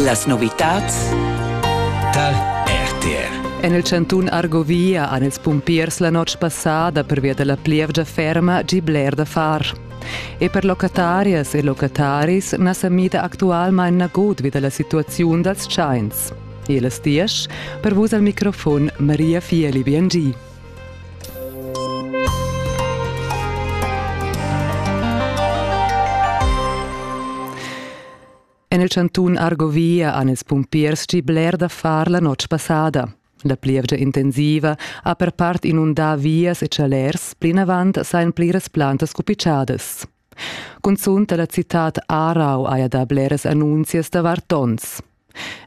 Las novitads tar RTR. En il chantun Argovia han ils pumpiers la notg passada pervia da la plievgia ferma gì bler da far. E per locatarias e locataris na sa mida actualmain nagut vi da la situaziun dals tschains. E las diesch per vus al microfon Maria Fieli Biangi. En il chantun Argovia han ils pumpiers gì bler da far la notg passada. La plievgia intensiva ha per part inundà vias e chalers, plinavant sajan pliras plantas cupitschadas. Cunzunt dalla citad Aarau haja dà bleras annunzias davart donns.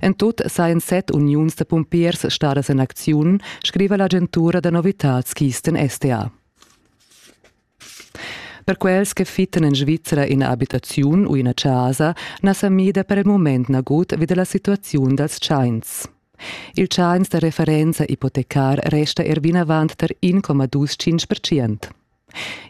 En tut sajan set uniuns da pumpiers stadas en acziun, scriva l'agentura da novitads Kisten SDA. Per quels che fittan en Svizzera ina abitaziun u ina chasa na sa mida per il moment nagut vi dalla situaziun dals tschains. Il tschains da referenza ipotecar resta er vinavant tar 1,25%.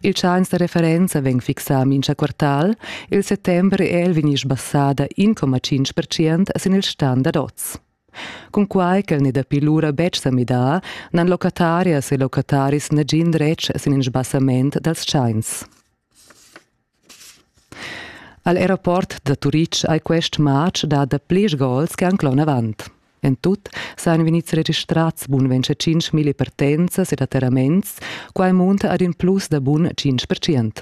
Il tschanc da referenza vegn fixà mincha quartal, il settember è el vegni sbassada 1,5% sin il stan dad oz. Cunquai ch'el n'è dapi lura betg sa midà, n'han locatarias e locataris nagin dretg sin in sbassament dals tschains. Al aeroport da Turitg ei quest matg dat da plirs gols che han clon avant. En tut san vegnids registrats bun ventscha tschintg mille partenzas ed atterraments, quai munta ad in plus da bun tschintg percent.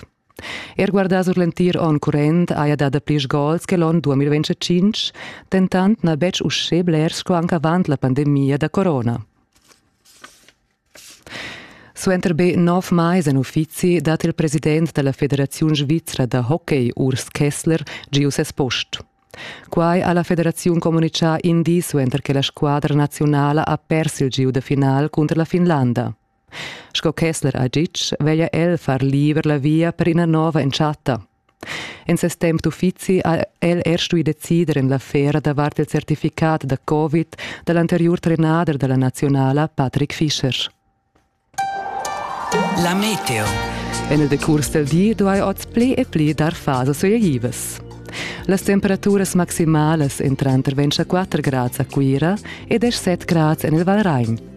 Er guardà sur l'entir onn current haja dà plirs gols che l'onn 2025, dentant n'ha betg uschè blers sco anc avant la pandemia da corona. Suenter be nov mais en uffizi dat il president da la Federaziun svizra da hockey Urs Kessler giu ses post. Quai ha la federaziun communitgà in di suenter che la squadra naziunala ha pers il giu da final cunter la Finlanda. Sco Kessler ha ditg, veglia el far liber la via per ina nova entschatta. En ses temp d'uffizi ha el er stuì decider en l'affera davart il certificat da Covid da l'anteriur trenader da la naziunala Patrick Fischer. La meteo. En il decurs del di duai oz pli e pli dar fasas ojevas. Las temperaturas maximalas entran tranter 24 grads a Cuira e 17 grads en il Valragn.